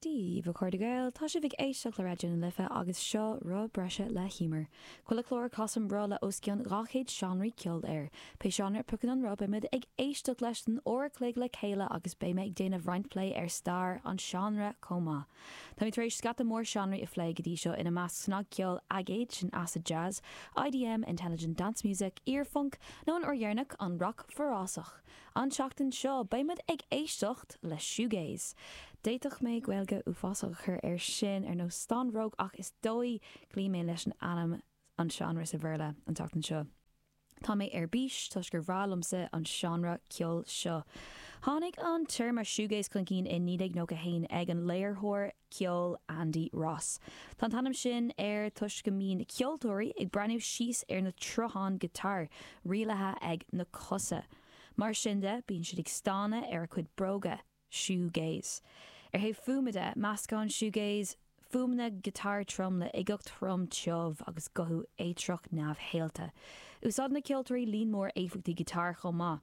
Dia dhaoibh, a chairde Gael, tá sibh ag éisteacht le Raidió na Life agus seo Rotha Bríomhar le hÍomar, chuile chlár a chasann roth le os cionn 200 seánra ceoil air. Pé seánra a phiocann an roth, beidh muid ag éisteacht leis don uair an chloig le chéile agus beidh mé ag déanamh roinnt plé ar stair an seánra chomh maith. Táimid tar éis scata mór seánraí a phlé go dtí seo, ina measc snagcheol, aigéad, sin acid jazz, IDM, intelligent dance music, iar-phunc, nó an uair dheireanach, an rac forásach. An tseachtain seo beidh muid ag éisteacht le shoegaze. D'fhéadfadh mé Gaeilge uafásach a chur air sin, ar nós stánróg, ach is dóigh go gcloífidh mé leis an ainm an seánra sa Bhéarla, an tseachtain seo. Tá mé ar bís toisc gur breá liomsa an seánra ceoil seo. Tháinig an téarma shoegaze chun cinn i 1991 ag an léiritheoir ceoil Andy Ross. Tá an t-ainm sin air toisc go mbíonn na ceoltóirí ag breathnú síos ar na troitheáin giotáir, rialaithe ag na cosa. Mar sin de, bíonn siad ag stánadh ar a gcuid bróga. Shoegaze. Ar thaobh fuaime de, meascann shoegaze fuaimeanna giotáir trom le uigeacht throm tiubh agus guthú éitreach neamhshaolta. Úsáideann na ceoltóirí líon mór éifeachtaí giotáir chomh maith.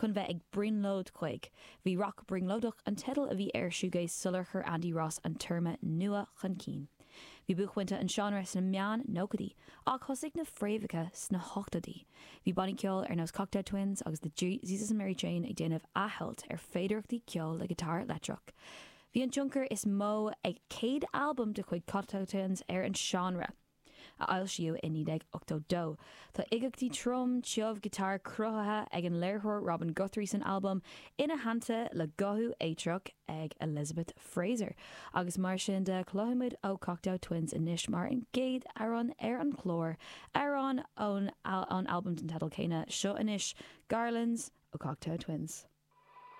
chun bheith ag brionglóid chuig. Bhí rac brionglóideach an teideal a bhí ar shoegaze sular chuir Andy Ross an téarma nua chun cinn. Bhí buaicphointe an seánra sna meán nóchaidí, ach thosaigh na fréamhacha sna hochtóidí. Bhí bannaí ceoil ar nós Cocteau Twins agus The Jesus and Mary Chain ag déanamh athshamhailt ar féidearthachtaí ceoil le giotáir leictreach. Bhí an tionchar is mó ag céad albam de chuid Cocteau Twins ar an seánra. a foilsíodh i 1982. Tá uigeachtaí trom, tiubh giotáir cruthaithe ag an léiritheoir Robin Guthrie san albam, ina theannta le guthú éitreach ag Elizabeth Fraser, agus mar sin de cloisimid ó Cocteau Twins anois mar an gcéad amhrán ar an chlár, amhrán ón albam den teideal céanna, seo anois Garlands ó Cocteau Twins.